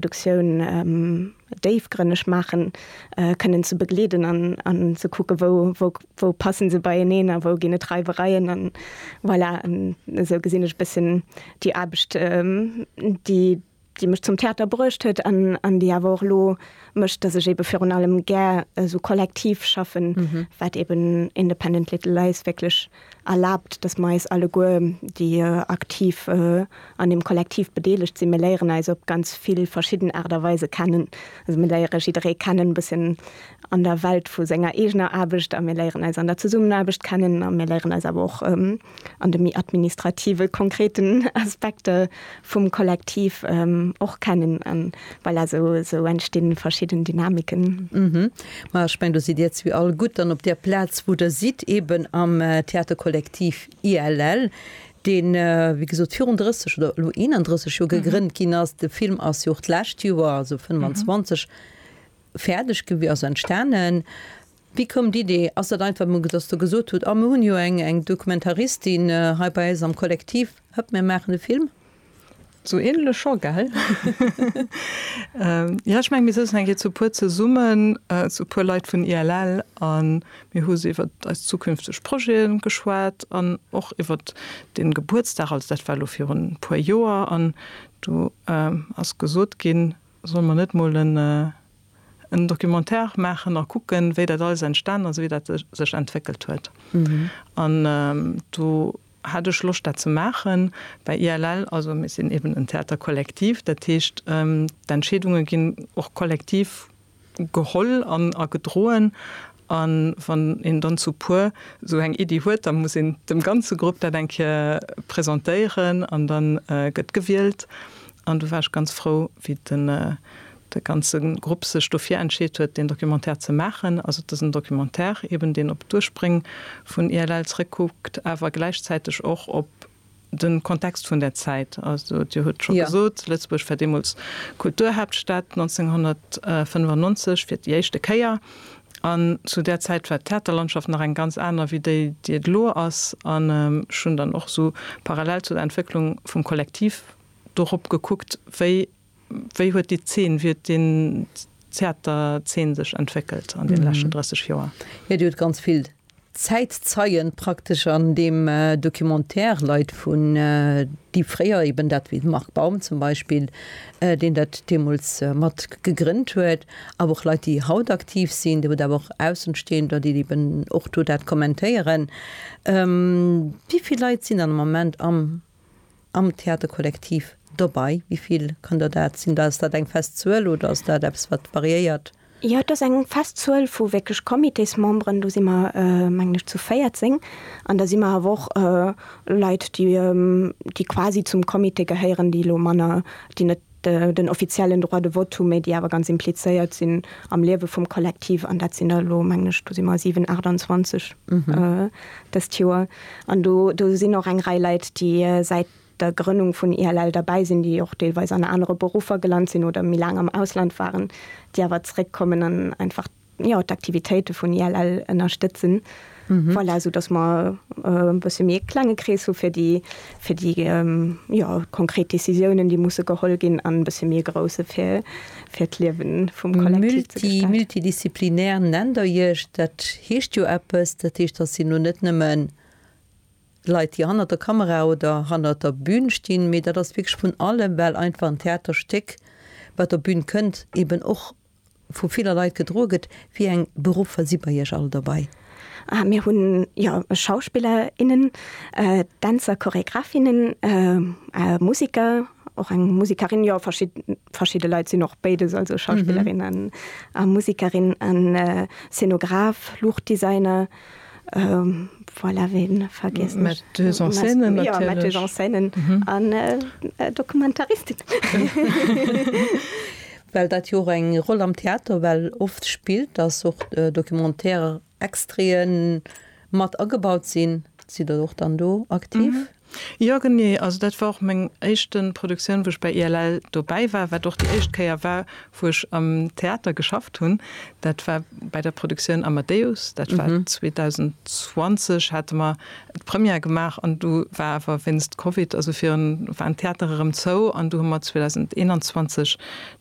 Produktioun déifgrënneg maachen, kënnen ze begleeden an ze kucke wou passen se beieneen a wou ginn et Reiwereien. An voilà, esou gesinn ech e bëssen déi Aarbecht déi mech zum Theater bruecht huet an déi awer och elo mécht, datt ech ebe virun allem gär esou kollektiv schaffen, wat eben Independent Little Lies wierklech. erlaabt, dass mer eis alleguer, déi aktiv an deem Kollektiv bedeelegt sinn, mir léieren eis op ganz vill verschidden Aart a Weise kennen. Also mir léiere jidderee kennen, e bësschen an der Welt vu senger eegener Aarbecht a mir léieren eis an der Zesummenaarbecht kennen a mir léieren eis awer och an de méi administrative konkreten Aspekter vum Kollektiv och kennen. Voilà, sou entstinn verschidden Dynamiken. Uhmm, ma ech mengen do sidd Dir zwee all gutt dann op der Plaz wou Der sidd, eben am Theaterkollektiv ILL, deen wéi gesot virun 30 oder elo 31 Joer gegrënnt ginn ass. De Film ass jo och d'lescht Joer, also 25, fäerdeg gewi, also entstanen. Wéi koum d'Idee? Ass dat einfach emol, dass Der gesot hutt, ah mir hunn jo eng, eng Dokumentaristin hei bei eis am Kollektiv, hëpp mir maachen e Film? Sou änlech scho, gell? Jo, ech meng mir souzen eng Kéier zu puer zesummen, zu puer Leit vun ILL, a mir hu se iwwer eis zukünfteg Projete geschwat an och iwwer dee Gebuertsdag, also dat war elo virun e puer Joer, an do ass gesot ginn, solle mer net mol en, en Documentaire maachen a kucken, wéi dat alles entstanen ass, wéi dat sech entwéckelt huet. An do hat ech Loscht, dat ze maachen. Bei ILL, also mir sinn eben en Theater collectif, dat heescht, d'Entscheedunge ginn och kollektiv geholl a gedroen. A wann een dann zu puer esou eng Iddi huet, da muss een dem ganze Grupp dat eng Kéier presentéieren an da gëtt gewielt. An do war ech ganz frou, wéi den de ganze Grupp sech dofir entscheet huet, deen Documentaire ze maachen. Also et ass en Documentaire eben, deen op d'Ursprëng vun ILL zréckkuckt, awer gläichzäiteg och op de Kontext vun där Zäit. Also Dir hutt scho gesot, Lëtzebuerg war deemools Kulturhaaptstad, 1995 fir déi éischte Kéier. An zu där Zäit war d'Theaterlandschaft nach eng ganz aner wéi déi, déi et elo ass. An ech hunn dann och esou parallel zu der Entwécklung vum Kollektiv dorop gekuckt, wéi. Wéi huet déi Zeen, wéi huet den Theaterzeen sech entwéckelt an deene leschten 30 Joer? Jo, déi huet ganz vill Zäitzeien praktesch an deem Documentaire, Leit vun, déi fréier eben dat, wéi de Marc Baum zum Beispill, deen dat deemools mat gegrënnt huet, awer och Leit, déi haut aktiv sinn, déi huet awer och Aussenstehender, déi eben och do dat kommentéieren. Wéi vill Leit sinn dann am Moment am am Theaterkollektiv dobei? Wéi vill kann der dat sinn? Ass dat eng fest Zuel oder ass dat eppes, wat variéiert? Jo, et ass eng fest Zuel vu wierklech Comitésmemberen. Do si mer, mengen ech, zu 14. An da si mer awer och Leit, déi quasi zum Comité gehéieren, déi elo manner, déi net, Den offiziellen Droit de vote hu méi, déi awer ganz implizéiert sinn am Liewe vum Kollektiv. An dat sinn der elo, mengen ech, do si mer 7, 28 dëst Joer. An do sinn och eng Rei Leit, déi säit der Grënnung vun ILL derbäi sinn, déi och deelweis an anere Beruffer gelant sinn oder méi laang am Ausland waren, déi awer zeréckkommen an einfach, jo, d'Aktivitéite vun ILL ënnerstëtzen. Voilà, soudass mer e bësse méi e klenge Krees hu fir déi, fir déi, jo, konkret Décisiounen, déi musse geholl ginn, an e bësse méi e grousse fir, fir d'Liewe vum Kollektiv ze gestalten. Multidisziplinär nennt Der Iech. Dat heescht jo eppes. Dat heescht, dass si nun net nëmme Leit, déi hannert der Kamera oder hannert der Bün stinn, mee dat ass wierklech vun allem, well einfach en Theaterstéck, wat der Bün kënnt, eeben och vu viller Leit gedroe gëtt. Wéi eng Beruffer si bei Iech all dobei? Mir hunn jo Schauspiller, innen, Dänzer, Choregraphinnen, Musiker, och eng Musikerin, jo verschidde Leit sinn och béides, also Schauspillerin a Musikerin, an Szenograf, Luuchtdesigner. Voilà, ween vergiessen ech? Metteuse en scène natierlech. Jo, Metteuse en scène an Dokumentaristin. Well dat jo och eng Roll am Theater well oft spillt, dass och Documentaire-Extraiten mat agebaut sinn. Sidd Der och dann do aktiv? Jo genee, also dat war och meng éischten Produktioun wou ech bei ILL dobäi war, wat och déi éischt Kéier war wou ech am Theater geschafft hunn. Dat war bei der Produktioun Amadeus, dat war 2020 hate mer d'Première gemaach an du war awer wéinst Covid, also virun waren d'Theatere rëm zou an du hu mer 2021 dann.